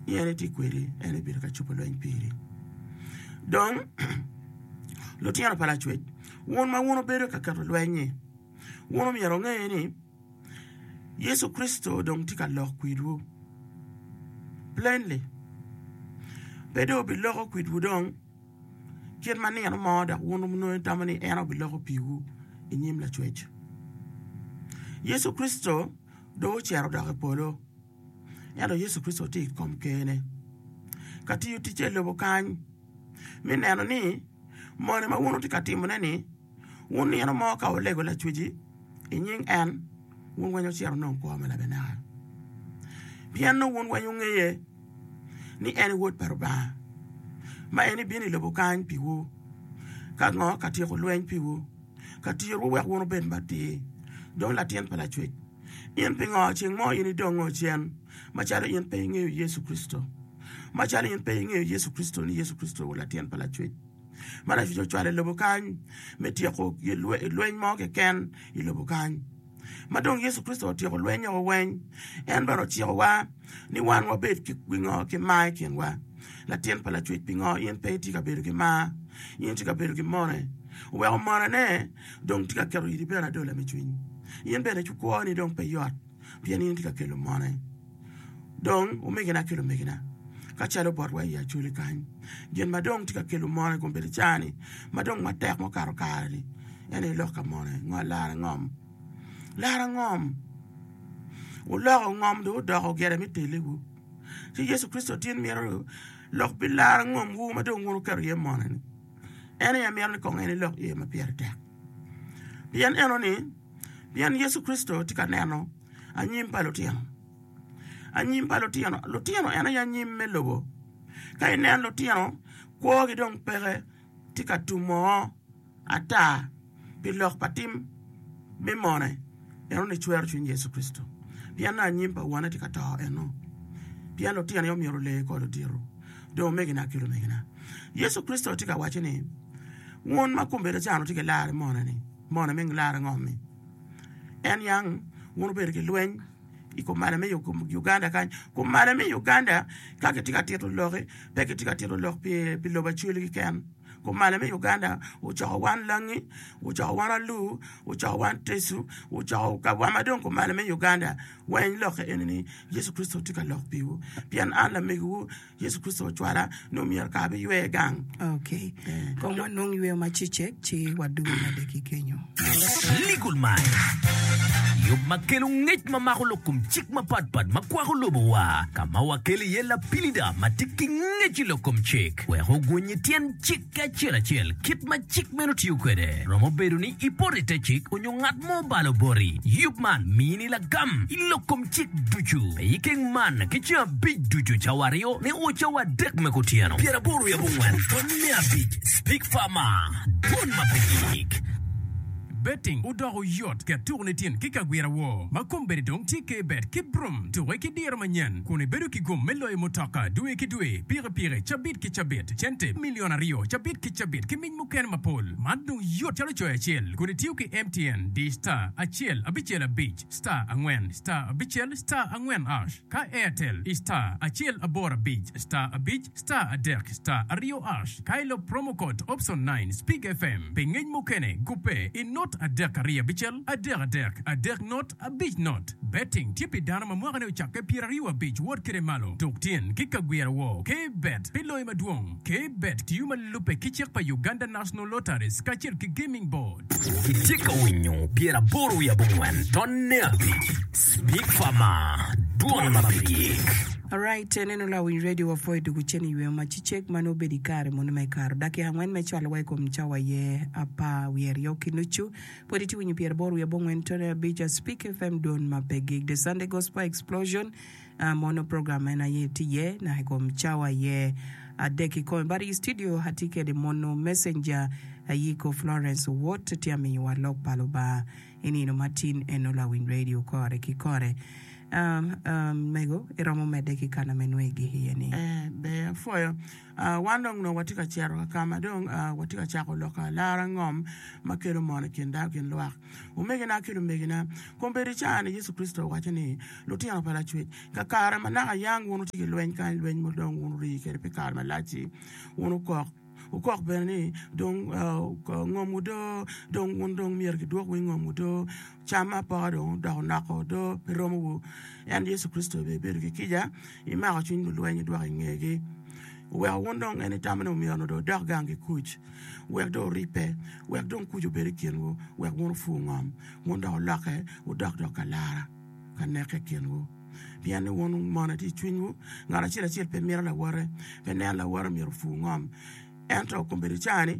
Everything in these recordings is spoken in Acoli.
ni en etye kwedi en ebedo ka cobo lweny piri. Dong lutino pa lacwec wun ma wun wubedo ka keto lweny-nyi, wun myero wunge ni Yecu Kricito dong tye ka lok kwedwu plainly. Pe dong obiloko kwedwu dong kit ma nino mo dok wun onongo itamo ni en obiloko piwu i nyim lacwec. Yecu Kricito dong ocito odok i polo. ento Yecu Kricito tye i kom Ker-ne ka tiyo ticce i lobo kany me neno ni moni ma wun wutye ka timone-ni, wun nino mo ka wulego Lacwec-ci i nying en, wun weng wucito wunong kwo me labanaka. Pien nongo wun weng wungeye ni en Wod pa Lubanga ma en ebino i lobo kany piwu ka ngo? Ka tyeko lweny piwu, ka tiyowu wek wun wubed matir, dong latin pa Lacwec. In pingo ceng mo in idongo ocen macalo in pe ingeyo Yecu Kricito? Macalo in pe ingeyo Yecu Kricito ni Yecu Kricito wa latin pa lacwec ma lacwec ocwalo i lobo kany me tyeko lweny mo keken i lobo kany. Ma dong Yecu Kricito otyeko lweny oko weny en bene ociko wa ni wan wabed ki pingo ki mar i kin wa. Latin pa lacwec pingo in pe itye ka bedo ki mar in itye ka bedo ki mone? Oweko mone ne. Dong tye ka keto iri bene adola me cwiny. In bene cukwoni dong pe yot, pien in itye ka kelo mone. Dong, omegina ki lumegina, ka calo botwa i Acholi kany, gin ma dong tye ka kelo mone i kom bedo caa-ni, ma dong matek mukato kare-ni, en aye lok ka mone, lara ngom. Lara ngom! Wuloko ngom dong wudoko gire me teliwu. Ci Yecu Kricito tin mito lok pi lara ngomwu ma dong wun wuketo iye mone-ni. En aye amito ni kong en ilok ye ma pire tek. Pien eno ni, pien Yecu Kricito tye ka neno anyim pa lutino. Anyim pa lutino, lutino en aye anyim me lobo. Ka inen lutino, kwogi dong peke tye ka tum oo ata. pi lok pa tim me mone, enoni cwero cwiny Yecu Kricito. Pien ni anyim pa wone tye ka to enno, pien lutinone omyero olee kor ludito, dong omegina ki lumegina. Yecu Kricito tye ka waco ni, Wun ma kumbedo can wutye ki lar i mone-ni, mone me lar ango-ni? En yang wun wubedo ki lweny i kumalo me Uganda kany. Kumalo me Uganda ka kitye ka tito loki, pe kitye ka tito lok pi lobo Acweli keken. Kumalo me Uganda ocoko wan langi, ocoko wan alu, ocoko wan tecu, ocoko ka wa ma dong kumalo me Uganda weng lokke eni ni Yecu Kricito tye ka lok piwu pien an lamegiwu Yecu Kricito ocwala nongo myero kara biywe gang. Ok, kong wanong yweyo ma cecek ci wadog mede ki kenyo. Legal Mind, yub ma kelo ngec ma mako lok kom cik mapatpat ma kwako lobowa, ka ma wakelo iye lapilida ma tye ki ngec i lok kom cik. cik wek oguny i tyen cik acel acel kit ma cik meno tiyo kwede. Romo bedo ni ipoto i te cik onyo ngat mo obalo boti. Yub man mini lagam i lok kom cik ducu. Pe ikeng man ki ceng abic ducu cawa aryo nyo o cawa adek me kutyeno. Pyeraboro i abongwen pwony me abic Speak Farmer, Dwon ma pe yik. Betting odoko yot ket tuku ni tin ki kagwira wo ma kombedi dong tye kbet ki brum tuke ki diro manyen kun ibedo ki gum me loyo mutoka dwe ki dwe pik pire cabit ki cabit, cente milion aryo cabit ki cabit, ki mic mukene mapol. Man dong yot calo coyo acel kun itiyo ki MTN, di star acel abicel abic star angwen star abicel star angwen ash, ka Airtel i star acel aboro abic star abic star adek star aryo ash, ka ilok promo code option nine Speak FM pi ngec mukene gubbe i not adek ariyo abicel adek adek adek not. Abic not, Betting tye pi dano ma mwakane ocakke pyeraryo abic wot kede malo tuk tyen ki ka gwiro woo. K-bet pi loyo madwong, K-bet tiyo ma lubbe ki cik pa Uganda National Lotteries kacel ki Gaming Board. Itye ka winyo pyer aboro wiye abongwen tonne abic, Speak Farmer, dwol ma pe gik. Alright, enenu lawiny radio wa pwo idwogo cen iyweyo ma ci cek ma nongo obedo ikare munu me karo dakika angwen me cwalo wa ikom cawa aye apar wiye aryo ki nucu. Pwod itye winyo pyera boro wiye abongwen tone abic a Speak FM dwon ma pe gig The Sunday Gospel Explosion a mono program meno aye tye iye naka i kom cawa aye adek ki kome bati i studio atye kede mono Messenger Ayiko Florence Owot tye amiyowa lok pa Lubanga i nino ma tin eno lawiny radio kore ki kore a a mego iromo mede ki kana me nwegi iye ni. Ee, ber apwoyo. Wan dong onongo watye ka cito ka ka ma dong watye ka cako lok lara angom ma kelo mot i kin dano gin lwak. Omegina ki lumegina, kombeddi i caa-ni Yecu Kricito owaco ni, Lutino pa Lacwec, kakare ma naka yang wun wutye ki lweny kany, lweny ma dong wun wurii kwede pi kare malac-ci, wun wukok, wukok bene ni, Dong ngom odoo, dong wun dong myero kidwok winy ngom odoo. Cam apoka dong odoko noko do pe romowu, en Yecu Kricito bene ibedo ki kica, imako cwiny lulweny idwoko i ngegi. Oweko wun dong en itammi ni omyero onongo dong idok gang ki kuc, wek dong oribbe, wek dong kuc obed i kinwu, wek wun opur ngom, wun dong wulokke wudok dong ka lara, ka neke i kinwu. Pien ni wun mone tye i cwinywu, ngat acel acel pe mito lawote, pe neno lawote omyero opur ngom. Ento kombeddi caa-ni.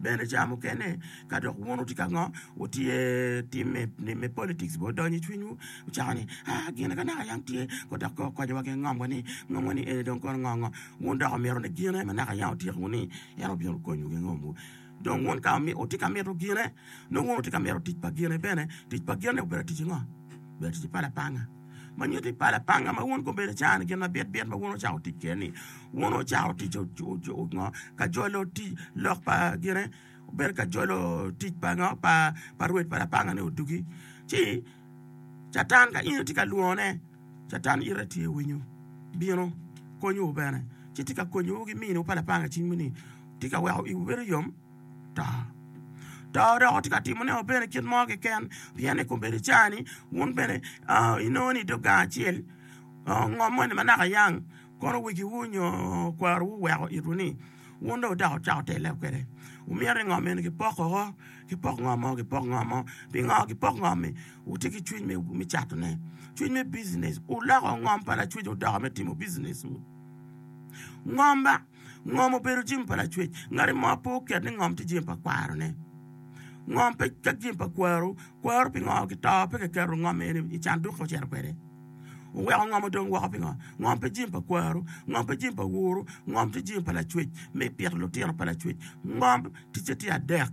bene ca mukene ka dok wun wutye ka ngo wutye tim me politics bene odonyo i cwinywu wucako ni gine ka naka yam tye kong dok okonyo wa ki ngom wani ngom wani eni dong kono ngo ngo wun dok wumito ni gine ma naka yam otyeko wunu ni en obino konyowu ki ngom wu dong wun ka wutye ka mito gine nongo wun wutye ka mito tic pa gine bene tic pa gine obedo tic ngo obedo tic pa lapanga. ma nyuto i pala panga ma wun gubedo icano gin ma bit bit ma wun wucako tic kwede ni wun wucako tic ngo ka jolo tic lok pa gine bedo ka jolo tic pa ngo pa rwed pa lapanga ni odugi ci catan ka in itye ka lwongo ne catan ite tye winyo bino konyowu bene ci tye ka konyowu ki miniwu pa lapanga cing ni tye ka weko iwu bedo yom to. To dok tye ka timone wa bene kit mo keken pien i kombeddi cawa ni wun bene i nongo ni i dog gang acel ngo moni ma naka yang kono wegi wu nyo kwaro wu oweko itwu ni wun dong wudak wucako telle wa kwede wumito ni ngo mene ki poko woko ki pok ngo mo ki pok ngo mo pi ngo ki pok ngo ni wutye ki cwiny me cato ne cwiny me bucines wuloko ngom pa lacwec wa odoko me timo bucines wu ngom ba Ngom obedo jami pa lacwec. Ngat mo pe oket ni ngom tye jami pa kwarone. Ngom pe calo jami pa kwaru. Kwaru pingo ki to pe kiketo ngom eni i canduk ka ocito kwede? Oweko ngom odong woko pingo? Ngom pe jami pa kwaru. Ngom pe jami pa wuru. Ngom tye jami pa lacwec me pito lutino pa lacwec. Ngom ticce tye adek.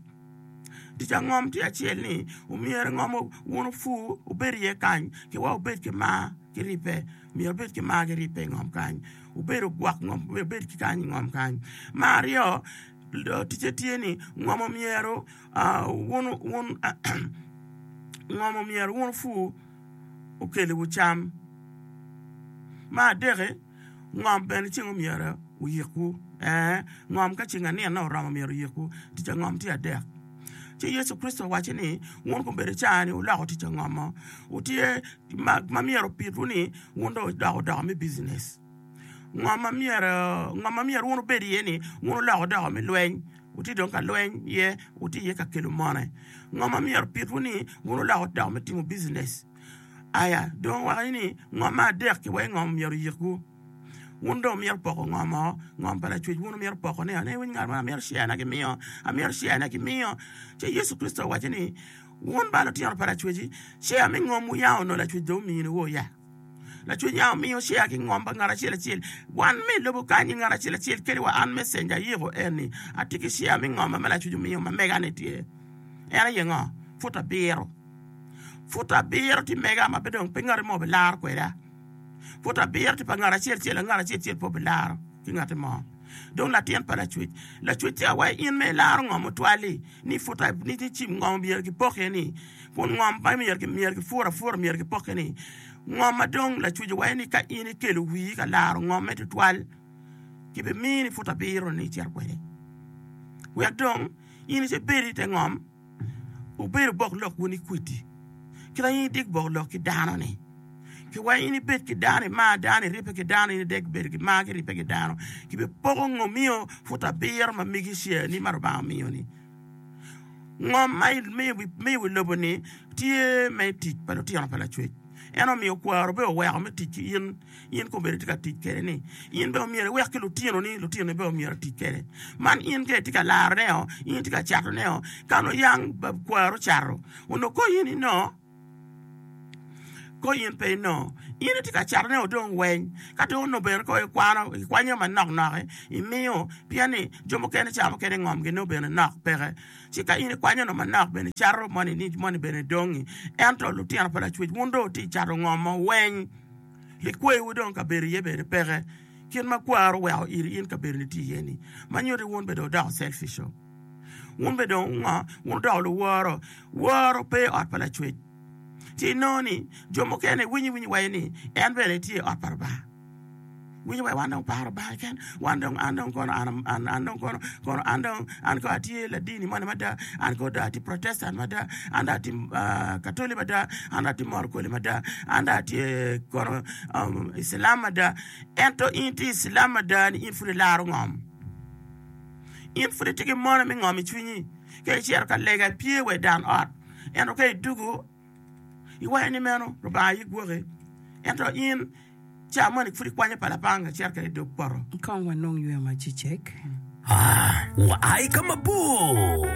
Tic pa ngom tye acel ni myero ngom wun opur wubed iye kany wa wubed ki mar ki ribbe. Myero wubed ki mar ki ribbe i ngom kany. Wubedo gwok ngom kong wubed ki kany i ngom kany. Me aryo, ticce tye ni ngom myero wun opur okeliwu cam. Me adek, ngom bene ceng myero oyikwu ngom ka ceng anino oromo myero oyikwu tic ngom tye adek. Ci Yecu Kricito owaco ni wun gubedo caa ni wuloko tic ngom-mo. ma myero opid wun ni wun dong wudoko doka me business. Ngo ma myero ngo ma myero wun wubed iye ni wun wuloko doka me lweny wutye dong ka lweny iye wutye iye ka kelo mone. Ngo ma myero opid wun ni wun wuloko doka me timo business. Aya dong wawak ni ngo ma adek ki wai ngo ma myero oyik wu. Wun dong wumyero poko ngo mo ngo pa lacwec wun wumyero poko ne o ne winy ngat mo amyero share na gimiyo amyero share na gimiyo ci Yecu Kricito owaco ni. Wun ba lutino pa lacweci, cer me ngom wuyango nongo lacwec dong omiyo niwo ya? Lacwec ya omiyo cer ki ngom pa ngat acel acel. Wan me i lobo kany-nyi ngat acel acel kadi wa an mecenja ayiko en-ni atye ki cer me ngom ma lacwec omiyo ma mega-ni tye. En aye ngo? Pud abiro. Pud abiro tye mega ma pe dong pe ngati mo bilaro kweda. Pud abiro tye pa ngat acel acel, ngat acel acel pe obilaro ki ngati mo. Dong latin pa lacwec, lacwecce a wa in ma ilaro ngom otwal-li, ni put a, ni cim ngom myero kipokke-ni, kun ngom ma myero, myero ki pur apura myero kipokke-ni. Ngom ma dong lacwec owaco ni ka in ikelo wii ka laro ngomme tutwal, kibimini put abiro-ni icito kwede, wek dong in icebed ite ngom. Wubedo bok lok wun i kwidi, kit ma in idik bok lok ki dano-ni. Ki wek in ibed ki dano, imar dano, iribbe ki dano, in idek bedo ki mar ki ribbe ki dano, kibipoko ngo miyo put abiro ma megi cereni ma Lubanga omiyo-ni. Ngo ma imiyo wi lobo-ni tye me tic pa lutino pa Lacwec. En omiyo kwaro bene oweko me tic ki in. in kong bene itye ka tic kwede ni in bene omyero iwek ki lutinoni lutinoni bene omyero otic kwede man in ka itye ka larone oo in itye ka catone oo ka nongo yang kwaro ocato onongo konyi ni noo konyi in pe inongo in itye ka catone oo dong weng ka dong onongo bene kong ikwano ikwanyo manok nok imiyo pien ni jo mukene cawa mukene ngomgi nongo bene nok peke ci ka in ikwanyo nongo manok bene icato moni ni moni bene dong-ngi ento lutino pa lacwec wun dong wutye ka cato ngomo weng. likwewu dong kabedo iye bene peke kit ma kwaro weko iri in kabedo ni tye iye ni ma nyuto ni wun bene dong odoko selfish o wun bene dong ngo wun odoko luworo woro pe iot pa lacwec ci inongo ni jo mukene winyi winyi waco ni en bene tye iot pa Lubanga winyi wa wan dong paro Lubanga keken wan dong an dong kono an an an dong kono kono an dong an kono atye ladini moni mada an kono dong atye protestant mada an dong atye katoli mada an dong atye moro kwele mada an dong atye kono icilam mada ento in itye icilam mada ni in pud ilaro ngom in pud itye ki mono me ngom icwinyi ka icito ka lega ipye wa i dan ot ento ka idwogo Iwaco ni meno Lubanga aye gwoki, ento in ca moni pud ikwanyo pala pa anga cerca i dog poto? Kong wanong yweyo ma cecek. A Wua i ka mabor.